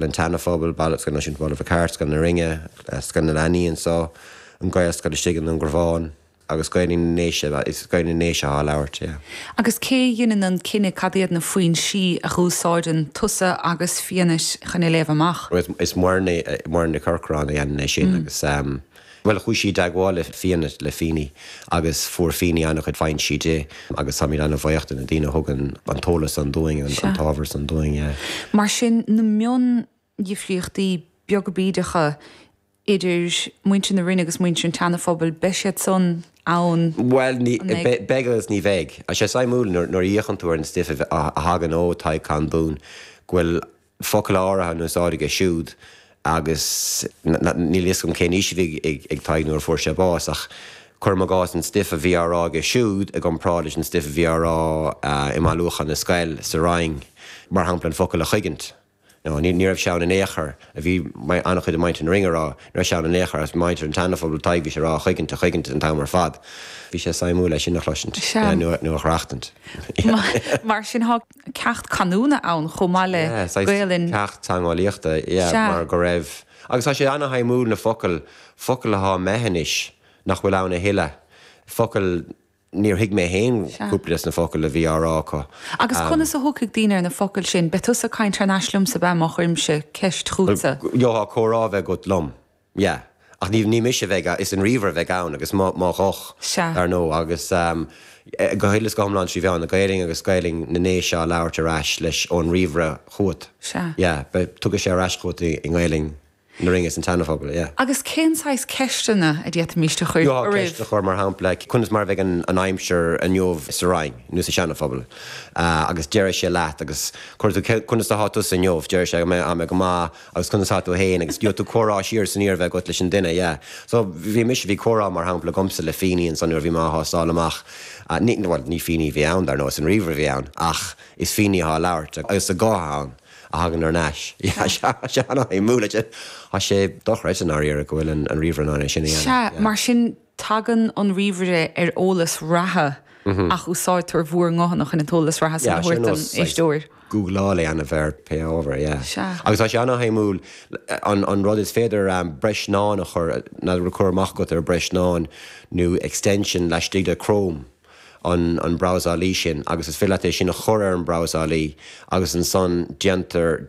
an tSeanaphobail, Baile Mhic Airt, Scoil Náisiúnta Bhaile Mhic Airt, Scoil na Rinne, Scoil na Leanaí anseo, an Ghaelscoil istigh i nDún Garbhán, agus Gaelainn na nDéise, is Gaelainn na nDéise atá á labhairt, yeah. Agus cé a dheineann an cinneadh cad iad na foinsí a dh'úsáideann tusa agus Fianait chun é a léamh amach? Is muirne, Muireann Nic Corcráin a dheineann é sin agus. Bhuel, chuaigh sí i dteagmháil le Fianna, le Feeney, agus fuair Feeney an-chuid foinsí di agus táimid an-bhaoch de na daoine a thugann an t-eolas san dúinn, an t-ábhar san dúinn. Mar sin, na miondhifríochtaí beaga bídeacha idir muintir na Rinne agus muintir an tSeana-Phobail, beidh siad san ann, an mbeidh? Bhuel, beidh agus ní bheidh. Tá sé suimiúil nuair a fhéachann tú ar an stuif a thagann ó Tadhg Condún go bhfuil focail áirithe in úsáid aige siúd agus níl a fhios agam cén aois a bhí ag Tadhg nuair a fuair sé bás ach cuirim i gcás an stuif a bhí á rá aige siúd i gcomparáid leis an stuif a bhí á rá i mbailiúchán na scol sa Rinn, mar shampla an focal 'chuigint'. No, ní raibh sé ann in aon chor, a bhí an-chuid ag muintir na Rinne á rá, ní raibh sé ann in aon chor, is muintir an tSeanaphobail, Tadhg, bhí sé ag rá 'chuigint, a chuigint' an t-am ar fad. Bhí sé suimiúil é sin a chloisint nó a dh'aireachtaint. Mar sin thá. ceacht canúna ann chomh maith le Gaelainn. Ceacht teangeolaíochta, yeah, mar go raibh. Agus tá sé an-shuimiúil na focail, focail athá imithe anois nach bhfuil ann a thuilleadh, focail níor thuig mé féin cúpla des na focail a bhí á rá acu. Agus conas a thiocfaidh daoine ar na focail sin? Beidh tusa ag caint thar n-ais liomsa, beidh, má chuirimse ceist chútsa. Gheobhthá comhrá a bheith agat liom. Yeah. Ach ní, ní mise a bheidh ann, is an ríomhaire a bheidh ann agus mo, mo ghuth, Sea. ar ndóigh. Agus, eh, go huile is go hiomlán trí mheán na Gaelainne agus Gaelainn na nDéise á labhairt ar ais leis ón ríomhaire chugat. Sea. Yeah, beidh, tiocfaidh sé ar ais chugat i, i nGaelainn na Rinne is an tSeanaphobail, yeah. Agus cén saghas ceisteanna a d'fhéadfaimis a chur air? Gheobhthá ceist a chur, mar shampla, conas mar a bheidh an, an aimsir inniu sa Rinn nó sa Seanaphobal? Ah, agus déarfaidh sé leat, agus cuir tú, conas athá tusa inniu? Déarfaidh sé, go mbeidh, ah, mbeidh go maith, agus conas atá tú féin agus gheobhaidh tú comhrá siar is aniar a bheith agat leis an duine, yeah. So, bhí mise, bhí comhrá mar shampla agamsa le Feeney ansan nuair a bhí mé á thástáil amach, ní, bhuel, ní Feeney a bhí ann dar ndóigh, is an ríomhaire a bhí ann, ach is Feeney atá á labhairt agus a guth ann a thagann thar n-ais, yeah, sea, tá sé an-shuimiúil, tá sé, tá sé dochreidte, i ndáiríre, go bhfuil an ríomhaire in ann é sin a dhéanamh, yeah. Sea, mar sin tagann an ríomhaire ar eolas reatha ach úsáidtear bhúr nguthanna chun an t-eolas reatha san a thabhairt don éisteoir. Googláil é aon ábhar, pé ábhar é. Agus tá sé ana-shuimiúil. An rud is féidir breiseán a chur, má tá cur amach agat ar breiseán nó extension laistigh de Chrome, an brabhsálaí sin, agus is féidir leat é sin a chur ar an brabhsálaí agus ansan déantar,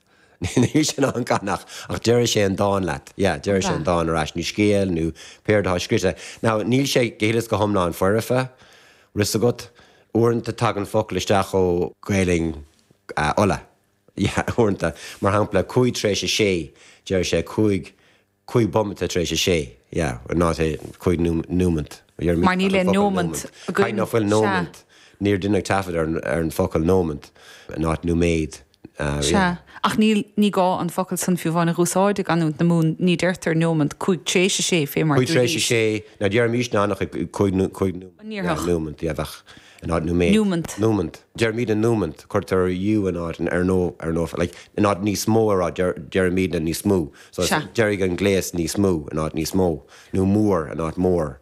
Níl sé in ann canadh, ach déarfaidh sé an dán leat. Yeah, déarfaidh sé an dán ar ais, nó scéal, nó pé rud atá scrite. Now, níl sé go huile is go hiomlán foirfe, fhios agat. Uaireanta tagann focal isteach ó Gaelainn Uladh, yeah, uaireanta, mar shampla, cúig tar éis a sé, déarfaidh sé cúig Cúig bomaite tar éis a sé, yeah, in áit cúig nómant, Mar níl aon nómant againn, High, fuil sea. nómant, níor deineadh taifead ar an, ar an focal nómant, in áit nóiméad, ah, sea. yeah. Ach níl, ní gá an focal san fiú amháin a dh'úsáid i gcanúint na Mumhan, ní deirtear nómant, cúig tar éis a sé, fé mar a Cúig tar éis a dúiríst. sé, ná déarfaimís ná nach ag cúig, cúig, An ndéarfadh? nómant, yeah, bheadh. in áit nóiméad, nómant. nómant. Deirimídne nómant, cuirtear ú in áit an ó, an ó, like, in áit níos mó a rá, deirimídne níos mó, so Sea. déarfaidh an gléas níos mó in áit níos mó, nó mór in áit mór,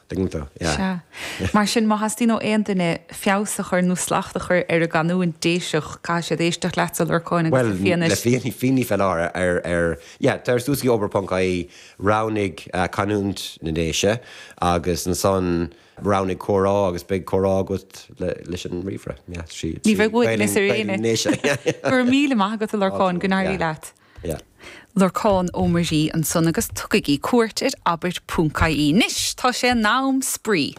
tuigeann tú? Yeah. Sea. Mar sin, má theastaíonn ó aon duine feabhas a chur nó slacht a chur ar a gcanúint Déiseach, caithfidh siad éisteacht leatsa, a Lorcáin, agus le Bhuel, Fianait leis. Fianait, Fianait ar fáil, ar, ar, yeah, tar suas go dtí abair ponc ie roghnaigh canúint na nDéise agus ansan, Roghnaigh comhrá agus beidh comhrá agat leis an ríomhaire. Yeah, sí, Ní bheidh uait le saor Gaeilge anois. anois. Go raibh míle maith agat, a Lorcáin, go n-éirí leat. Yeah. Lorcán Ó Muirí ansan agus tugaigí cuairt ar abair.ie. Anois tá sé in am spraoi!